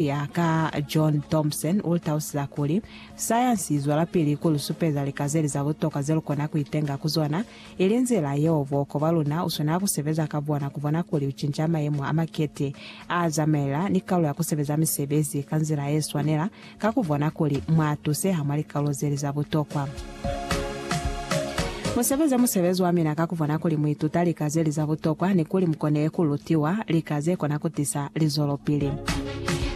ya ka John Thompson u tausisa kuli, Sayansi i zwelapili ku lu supeza lika ze li za butoka ze lu kona ku itenga ku zona, ili nzila yeo buhoko bwa luna u swanela ku sebeza ka bona ku bona kuli u cinca mayemo a makete a zamaela ni kalu ya ku sebeza misebezi ka nzila ye swanela ka ku bona kuli mwa tuseha mwa likalolo ze li za butokwa. Mu sebeze musebezi wa mina ka ku bona kuli mu ituta lika ze li za butokwa ni kuli mu kone ku lutiwa lika ze kona ku tisa lizwelopili.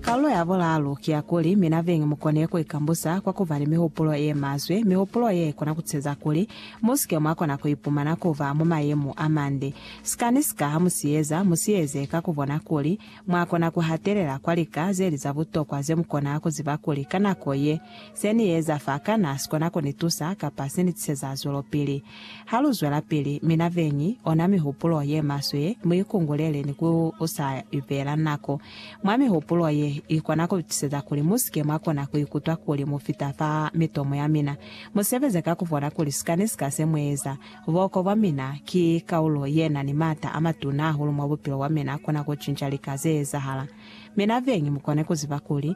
Kaulo ya bulaalu ki ya kuli mina beñi mu kone ku ikambusa kwa ku ba ni mihupulo ye maswe, mihupulo ye kona ku ceza kuli mu si ke mwa kona ku ipumana ku ba mwa mayemo a mande. Sikanisika ha mu si eza, mu si eze ka ku bona kuli mwa kona ku hatelela kwa lika ze li za butokwa ze mu kona ku ziba kuli ka nako ye Se ni eza fa, kana si kona ku ni tusa kapa se ni tiseza zwelopili? Ha lu zwelapili, mina beñi, ona mihupulo ye maswe ye mu ikungulele ni ku sa ibeela nako mwa mihupulo ye i kona ku tiseza kuli mu si ke mwa kona ku ikutwa kuli mu fita fa mitomo ya mina. Mu sebeze ka ku bona kuli sika ni sika se mu eza, buhoko bwa mina ki kaulo ye na ni m'ata a matuna hahulu mwa bupilo bwa mina kona ku cinca lika ze ezahala. Mina beñi mu kone ku ziba kuli,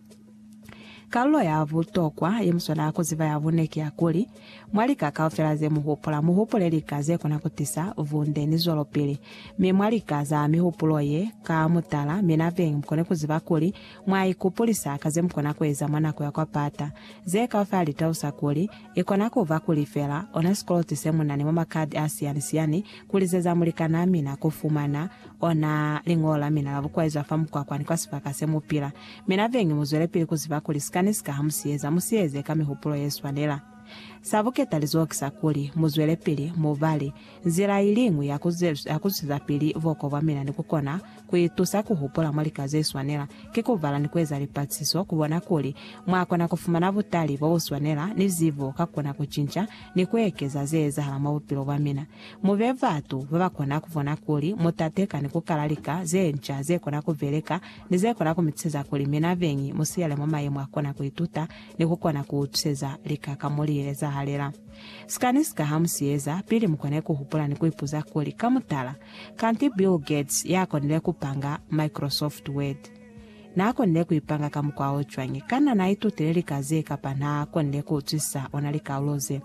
Kalulo ya butokwa ye mu swanela ku ziba ya bune ki ya kuli, mwa lika kaufela ze mu hupula, mu hupule lika ze kona ku tisa bunde ni zwelopili. Mi mwa lika za mihupulo ye, ka mutala, mina beñi mu kone ku ziba kuli mwa ikupulisa ka ze mu kona ku eza mwa nako ya kwa pata. Ze kaufela li talusa kuli, i kona ku ba ku lifela ona sikoloti se mu na ni mwa makadi a siyani-siyani, ku lizeza mulikanaa mina ku fumana Ona liñolo la mina la bukwaizwa fa mukwakwa ni kwa sibaka se mu pila. Mina bengi mu zwelepili ku ziba kuli sika ni sika ha mu si eza, mu si eze ka mihupulo ye swanela. Sa buketalizoho ki sa kuli, mu zwelepili, mu bale. Nzila i liñwi ya ku zwezapili buoko bwa mina ni ku kona ku itusa ku hupula mwa lika ze swanela, ki ku bala ni ku eza lipatisiso ku bona kuli mwa kona ku fumana butali bo bu swanela ni zibo ka ku kona ku cinca ni ku ekeza ze ezahala mwa bupilo bwa mina. Mu be batu ba ba kona ku bona kuli mu tateka ni ku kala lika ze nca ze kona ku beleka ni ze kona ku mi tuseza kuli mina beñi mu silele mwa mayemo a kona ku ituta ni ku kona ku utuseza lika ka mo li ezahalela. Sika ni sika ha mu si eza, pili mu kone ku hupula ni ku ipuza kuli, Ka mutala, kanti Bill Gates ya konile ku panga Microsoft Word n'a konile ku i panga ka mukwa o cwañi? Kana n'a itutile lika ze kapa n'a konile ku utwisisa ona likaulo ze?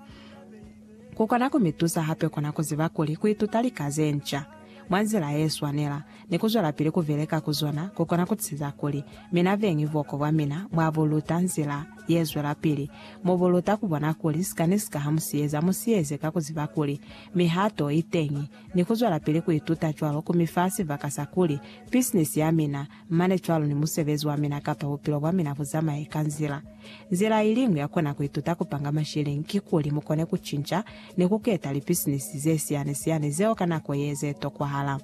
Ku kona ku mi tusa hape ku na ku ziba kuli ku ituta lika ze nca mwa nzila ye swanela ni ku zwelapili ku beleka ku zona ku kona ku tisiza kuli mina beñi buhoko bwa mina bwa bu luta nzila ye zwelapili. Mu bu luta ku bona kuli sika ni sika ha mu si eza, mu si eze ka ku ziba kuli mihato i teñi ni ku zwelapili ku ituta cwalo ku mi fa sibaka sa kuli bisinisi ya mina Mane cwalo ni musebezi wa mina kapa bupilo bwa mina bu zamaye ka nzila. Nzila iliñwi ya kona ku ituta ku panga mashilingi ki kuli mu kone ku cinca ni ku keta lipisinisi ze siani-siani zeo ka nako ye ze tokwahala.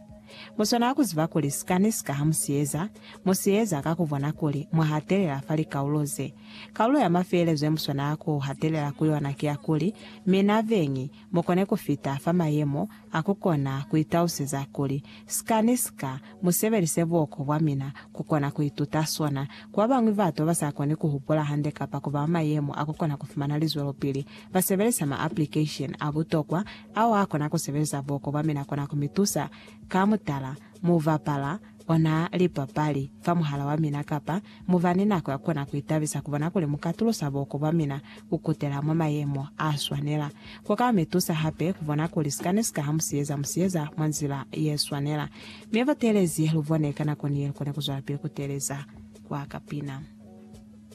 Mu swanela ku ziba kuli sika ni sika ha mu si eza, mu si eza ka ku bona kuli mwa hatelela fa likaulo ze. Kaulo ya mafelezo ye mu swanela ku hatelela ku yona ki ya kuli, Mina Veñi, mu kone ku fita fa mayemo a ku kona ku itauseza kuli, Sika ni sika mu sebelise buoko bwa mina ku kona ku ituta sona. Ku ba bañwi batu ba ba sa koni ku hupula hande kapa ku ba mwa mayemo a ku kona ku fumana lizwelopili, ba sebelisa ma-aplikesheni a butokwa ao a kona ku sebeleza buoko bwa mina kona ku mi tusa. Ka mutala, mu bapala ona lipapali fa muhala wa mina kapa mu ba ni nako ya kona ku itabisa ku bona kuli mu ka tulusa buko bwa mina ku kutela mwa mayemo a swanela. Ku ka mi tusa hape ku bona kuli sikani si kaha musiyeza musiyeza mwa nzila ye swanela. Mi buteelezi lu bone ka nako ni ye lu kone ku zwelapili ku teeleza kwa kapina.